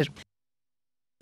kir.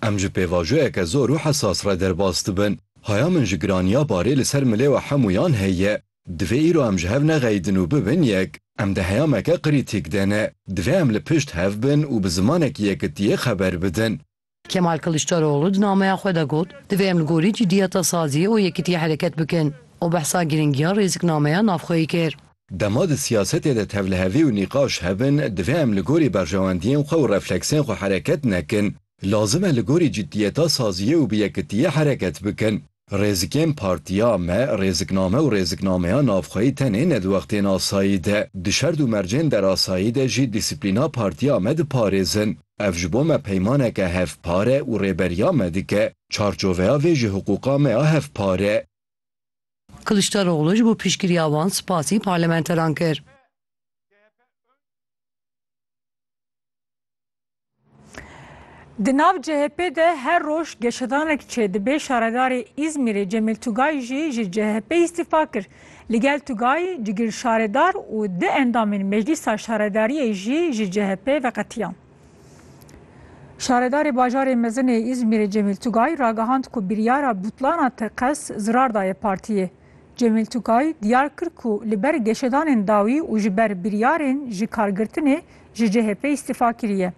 Em ji pêvajoyeke zor û hesas re derbas dibin. Haya min ji giraniya barê li ser milê we hemûyan heye. Divê îro em ji hev nexeyidin û bibin yek. Em di heyameke qirîtîk de ne. Divê em li pişt hev bin û bi zimanekî yekitiyê xeber bidin. Kemal Kiliçdaroglu di nameya xwe de got, Divê em li gorî cîdiyeta saziyê û yekitiyê hereket bikin. Û behsa girîngiya rêziknameya navxweyî kir. Dema di siyasetê de tevlihevî û nîqaş hebin, divê em li gorî berjewendiyên xwe û refleksên xwe hereket nekin. Lazim e li gorî ciddiyeta saziyê û bi yekitiyê hereket bikin. Rêzikên partiya me, rêzikname û rêziknameya navxweyî tenê ne di wextên asayî de, di şerd û mercên derasayî de jî dîsiplîna partiya me diparêzin. Ev ji bo me peymaneke hevpar e û rêberiya me dike. Çarçoveya vê jî hiqûqa me ya hevpar e. Kiliçdaroglu ji bo piştgiriya wan spasî parlamenteran kir. Di nav CHP'ê de her roj geşedanek çêdibê, şaredarê Îzmîrê Cemîl Tugay jî ji CHP'ê îstîfa kir. Li gel Tugay, cigir şaredar û du endamên Meclîsa Şaredariyê jî ji CHP'ê veqetiyan. Şaredarê bajarê mezin ê Îzmîrê Cemîl Tugay ragihand ku biryara butlana TKES zirar daye partiyê. Cemîl Tugay diyar kir ku li ber geşedanên dawî û ji ber biryarên ji kargirtinê ji CHP'ê îstîfa kiriye.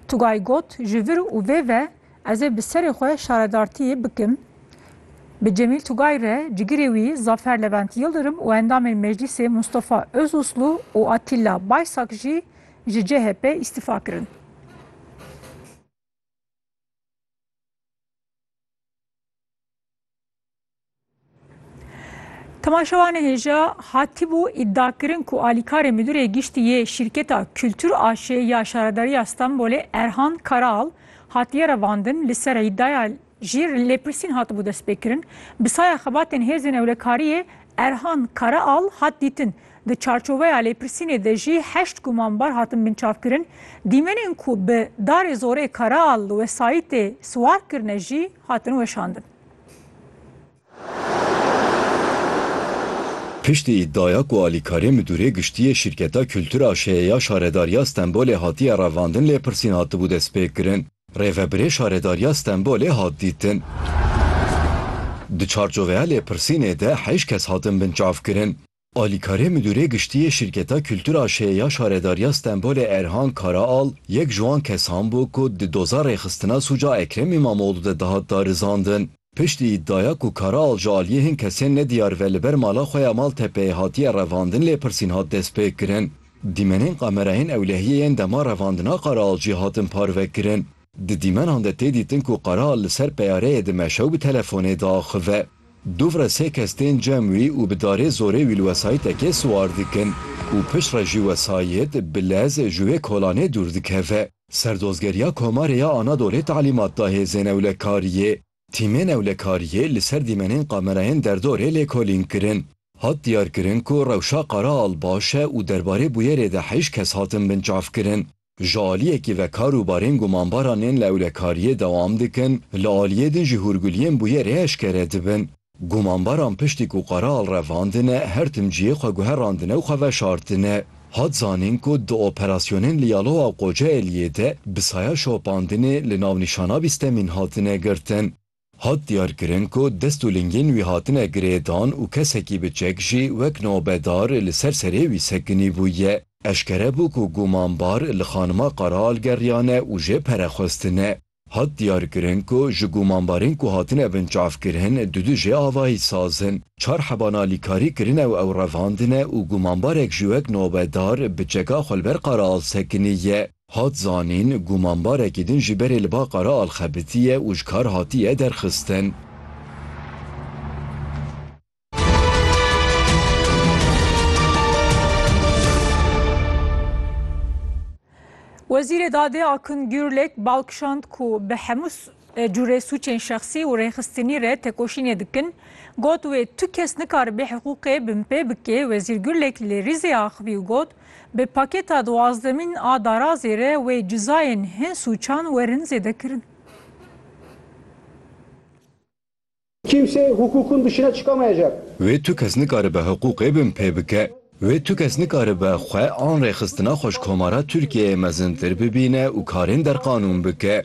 Tugay got, Ji vir û vê ve ez ê bi serê xwe şaredartiyê bikim. Bi Cemîl Tugay re cigirê wî Zafer Levent Yildirim û endamên meclîsê Mustafa Ozuslu û Atîlla Baysak jî Ji CHP îstifa kirin. Temaşevanê hêja hatibû îdia kirin ku alîkarê Midurê Giştî yê Şîrketa Kultur AŞ'ê ya Şaredariya Stenbolê Erhan Karaal hatiye revandin li ser îdaya jî lêpirsîn hatibû destpêkirin. Bi saya xebatên hêzên ewlekariyê Erhan Karaal hat dîtin. Di çarçoveya lêpirsînê de jî heşt gumanbar hatin binçavkirin. Dîmenên ku bi darê zorê Karaal li wesayîtê siwar kirine jî hatin weşandin. Piştî îddiaya ku alîkarê Midûrê Giştî yê Şîrketa Kultur a Şêyê ya Şaredariya Stenbolê hatiye revandin lêpirsîn hatibû destpêkirin. Rêvebirê Şaredariya Stenbolê hat dîtin. Di çarçoveya lêpirsînê de heyş kes hatin binçavkirin. Alîkarê Midûrê Giştî yê Şîrketa Kultura Şê ya Şaredariya Stenbolê Erhan Karaal yek ji wan kesan bû ku di doza rêxistina sûca Ekrem Îmamoglû de dihat darizandin. Piştî îdaya ku Karaal ji aliyê hin kesên nediyar ve li ber mala xwe ya Maltepeyê hatiye revandin lêpirsîn hat destpêkirin. Dîmenên kamerayên ewlehiyê yên dema revandina Karaal jî hatin parvekirin. Di dîmenan de tê dîtin ku Qeral li ser peyareyê di meşe û bi telefonê diaxive. Dûv re sê kes tên cem wî û bi darê zorê wî li wesayîtekê siwar dikin û pişt re jî wesayît, bilez, ji wê kolanê dûr dikeve. Serdozgeriya Komarê ya Anadolê talîmat da hêzên ewlekariyê. Tîmên ewlekariyê li ser dîmenên kamerayên derdorê lêkolîn kirin. Hat diyarkirin ku rewşa Qeral baş e û derbarê bûyerê de heşt kes hatin binçavkirin. Ji aliyekê ve kar û barên gumanbaran ên li ewlekariyê dewam dikin, li aliyê din jî hûrguliyên bûyerê eşkere dibin. Gumanbaran piştî ku qeral revandine, her tim cihê xwe guherandine û xwe veşartine. Hat zanîn ku di operasyonên li Yalowa û Qocaeliyê de bi saya şopandinê li navnîşana bîstemîn hatine girtin. Hat diyarkirin ku dest û lingên wî hatine girêdan û kesekî bi çek jî wek nobedar li ser serê wî sekinîbûye. Eşkere bû ku gumanbar li Xanima Qaraal geriyane û jê pere xwestine. Hat diyarkirin ku ji gumanbarên ku hatine binçavkirin du du jê avayî saz in. Çar heba nalîkarî kirine û ew revandine û gumanbarek jî wek nobedar bi çeka xwe li ber Qaraal sekinî ye. Hat zanîn, gumanbarekî din ji berê li ba qara alxebitiye û ji kar hatiye derxistin. Wezîrê Dadê Akın Gürlek bal kişand ku bi hemû cûrê sûcên şexsî û rêxistinî re tekoşînê dikin. Got wê tu kes nikaribê hiqûqê binpê bikê. Wezîr Gürlek li Rîzê axivî û got, Bi pakêta duwazdemîn a darazê re wê cizayên hin sûçan werin zêdekirin. Kimse hukukun dışına çıkamayacak. Wê tu kes nikaribe hiqûqê bin pê bike. Wê tu kes nikaribe xwe an rêxistina xweşkomara Tirkiyeyê mezintir bibîne û karên derqanûn bike.